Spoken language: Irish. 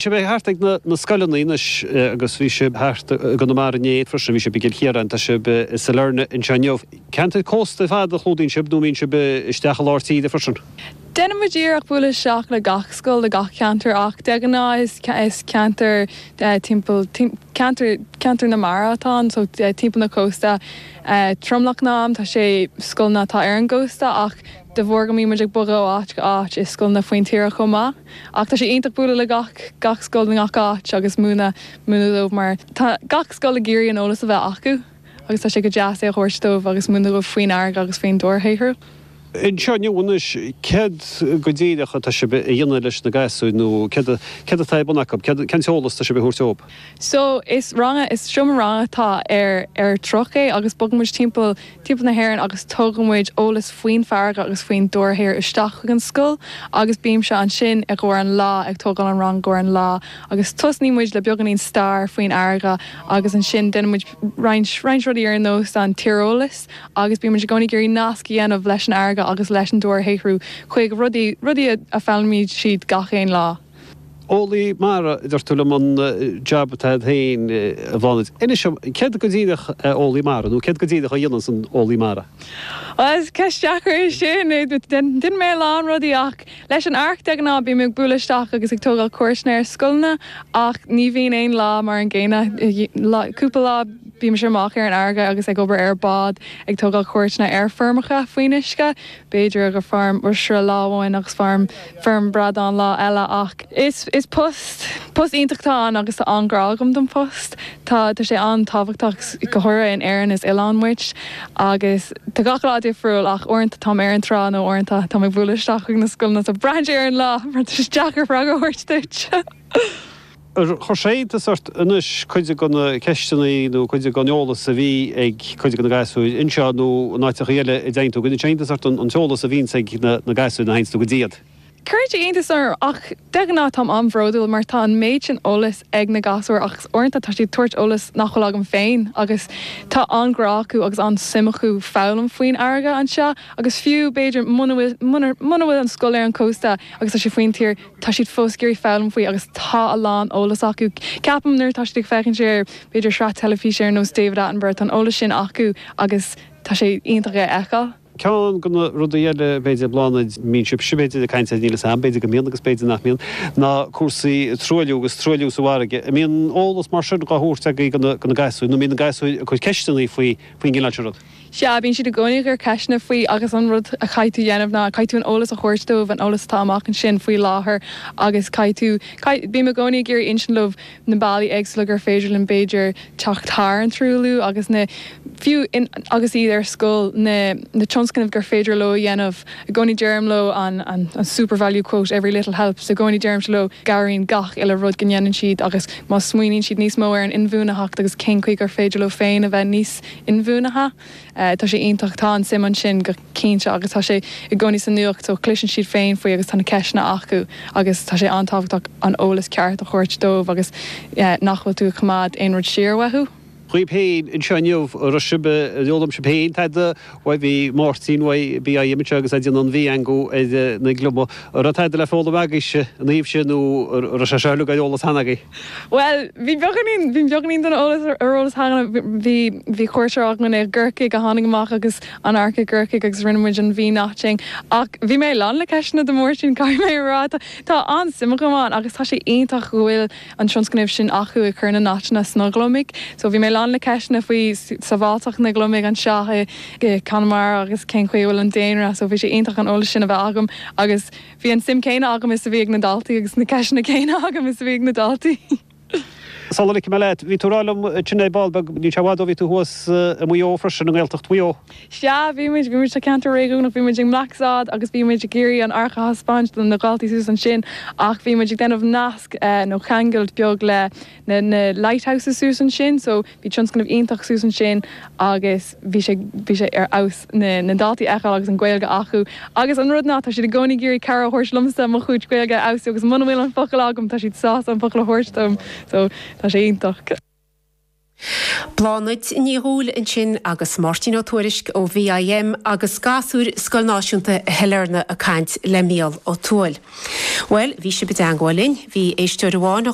sibh bheith thart ag na scoileanna anois agus bhí sibh thart i gConamara inné freisin, bhí sibh i gCill Chiaráin, tá sibh i Sailearna anseo inniu. Ceantair cósta ar fad a chlúdaíonn sibh nó an mbíonn sibh isteach i lár tíre freisin. Déanann muid iarracht bualadh isteach le gach scoil i gach ceantar ach de ghnáth is ceantair timpeall, ceantair, ceantair na mara atá ann so timpeall na cósta tromlach an am, tá sé, scoileanna atá ar an gcósta ach de bharr go mbíonn muid ag bogadh ó áit go áit is scoileanna faoin tíre chomh maith. Ach tá sé iontach bualadh le gach gach scoil i ngach áit agus múineadh múineadh dóibh mar tá gach scoil ag iarraidh an eolas a bheith acu agus tá sé go deas é a thabhairt dóibh agus múineadh dóibh faoin fharraige agus faoin dobharshaothrú. Anseo inniu anois, céard go díreach atá sibh a dhéanamh leis na gasúir nó céard céard atá ar bun acu? Céard cén t-eolas atá sibh a thabhairt dóibh? So is rang a is seomra ranga atá ar ar truck é agus bogann muid timpeall timpeall na hÉireann agus tugann muid eolas faoin bhfarraige agus faoin dobharshaothrú isteach chuig an scoil agus bímse ansin i gcomhair an lá ag tógáil an rang i gcomhair an lá agus tosnaíonn muid le beagáinín stair faoin fharraige agus ansin déanann muid roinnt roinnt rudaí ar nós an tíreolas agus bíonn muid i gcónaí ag iarraidh nasc a dhéanamh leis an fharraige agus leis an dobharshaothrú chuig rudaí rudaí a fhoghlaimíonn siad gach aon lá. Eolaí mara, a dúirt tú liom, an jab atá agat féin, a Bhláthnaid. Inis dom, céard go díreach é eolaí mara, nó céard go díreach a dhéananns an eolaí mara? Bhuel, is ceist deacair é sin. Déanaim a lán rudaí ach leis an ARC de ghnáth bím ag bualadh isteach agus ag tógáil cuairteanna ar scoileanna ach ní bhíonn aon lá mar an gcéanna. Cúpla lá bímse amach ar an fharraige agus ag obair ar bhád ag tógáil cuairteanna ar feirmeacha faoin uisce. b'fhéidir gur feirm oisre lá amhain agus feirm bradán lá eile ach is post post iontach atá ann agus tá an-ghrá agam don phost. Tá tá sé an-tábhachtach go háirithe in Éirinn is oileán muid agus tá gach lá difriúil ach uaireanta táim ar an trá nó uaireanta táim ag bualadh isteach chuig na scoileanna so braitheann sé ar an lá mar tá sé deacair freagra a thabhairt duit. Ar chuir sé iontas ort anois cuid de na ceisteanna nó cuid den eolas a bhí ag cuid de na gasúir anseo nó in áiteachaí eile a dteigheann tú? An gcuireann sé iontas ort an t-eolas a bhíonns ag na gasúir nuair a theigheanns tú go dtí iad? Cuireann sé iontas orm ach de ghnáth táim an-bhródúil mar tá an méid sin eolas ag na gasúir agus uaireanta tá siad ag tabhairt eolas nach bhfuil agam féin agus tá an-ghrá acu agus an-suim acu foghlaim faoin fharraige anseo agus fiú b'fhéidir muna bhfuil an scoil ar an chósta agus tá sé faoin tír Tá siad fós ag iarraidh foghlaim faoi agus tá a lán eolas acu. Ceapaim nuair atá siad ag féachaint ar b'fhéidir sraith teilifíse ar nós David Attenborough, tá an eolas sin acu agus tá sé iontach é a fheiceáil. Ceann go na rudaí eile b'fhéidir a Bhláthnaid a mbíonn sibh sibh b'fhéidir ag caint air, níl 'fhios a'm, b'fhéidir go mbíonn agus b'fhéidir nach mbíonn, ná cúrsaí truailliú agus truailliú sa bhfarraige. An mbíonn eolas mar sin dhá thabhairt agaí go na gasúir nó mbíonn na gasúir ag cur ceisteannaí faoi faoin gcineál sin rud? Sea, bíonn siad i gcónaí ag cur ceisteanna faoi agus an rud a chaithfidh tú dhéanamh ná, caithfidh tú an eolas a thabhairt dóibh, an eolas atá amach ansin faoi láthair agus caithfidh tú, caithfidh, bím i gcónaí ag iarraidh insint leo na bealaí éagsúla gur féidir linn b'fhéidir teacht thar an truailliú agus na, fiú in, agus iad ar scoil, na, na tionscnaimh gur féidir leo a dhéanamh. I gcónaí deirim leo an, an, an Supervalu quote, every little helps, i gcónaí deirimse leo gcabhraíonn gach uile rud go ndéanann siad agus má smaoiníonn siad níos mó ar an inbhuanaitheacht agus cén chaoi gur féidir leo féin a bheith níos, inbhuanaithe. Tá sé iontach, tá an suim ansin go cinnte agus tá sé i gcónaí sa nuacht so cloiseann siad féin faoi agus tá na ceisteanna acu agus tá sé an-tábhachtach an eolas ceart a thabhairt dóibh agus nach bhfuil tú ag coimeád aon rud siar uathu. Cibé anseo inniu raibh sibh, ar fhoghlaim sibh féin tada uaidh. Bhí Máirtín uaidh BIM anseo agus é ag déanamh an V-eangú ar na gliomaigh. An raibh tada le foghlaim agaibhse ina thaobh sin nó an raibh sé seo uilig ar eolas cheana agaibh? Bhuel, bhí beagáinín, bhí beagáinín den eolas, ar eolas cheana. Bhí, bhí cuairteoir agam i gCorcaigh a tháinig amach agus an Arc i gCorcaigh agus rinne muid an V-notching. Ach bhí mé lán le ceisteanna do Mháirtín, caithfidh mé a rá. Tá, tá an-suim agam ann agus tá sé iontach go bhfuil an tionscnamh sin acu ag cur na notcheanna sna gliomaigh. So bhí mé lán le ceisteanna faoi sabháilteacht na ngliomaigh anseo i, i Conamara agus cén chaoi a bhfuil an daonra. So bhí sé iontach an eolas sin a bheith agam agus. Bhí an suim céanna agam is a bhí ag na daltaí agus na ceisteanna céanna agam is a bhí ag na daltaí. Sul a ligfidh mé leat, bhí tú ag rá liom tigh an ae ball beag, níl sé bhfad ó bhí tú thuas i Muigh Eo freisin, i nGaeltacht Mhuigh Eo. Sea, bhí muid, bhí muid tá ceantar réigiúnach, bhí muid i mBlacksod agus bhí muid ag iarraidh an Arc a thaispeáint do na daltaí suas ansin ach bhí muid ag déanamh nasc nó ceangailt beag le na na lighthouses suas ansin so Bhí tionscnamh iontach suas ansin agus bhí sé, bhí sé ar fheabhas na, na daltaí a fheiceáil agus an Ghaeilge acu. Agus an rud ná, tá siad i gcónaí ag iarraidh cabhair a thabhairt liomsa mo chuid Gaeilge a fheabhsú agus muna bhfuil an focal agam tá siad sásta an focal a thabhairt dom. So, tá sé iontach. Bláthnaid Ní Dhúill ansin agus Máirtín Ó Tuairisg ó BIM agus gasúir Scoil Náisiúnta Shailearna ag caint le Mícheál Ó Tuathail. Bhuel, bhí sibh i dteangmháil linn, bhí éisteoir amháin a.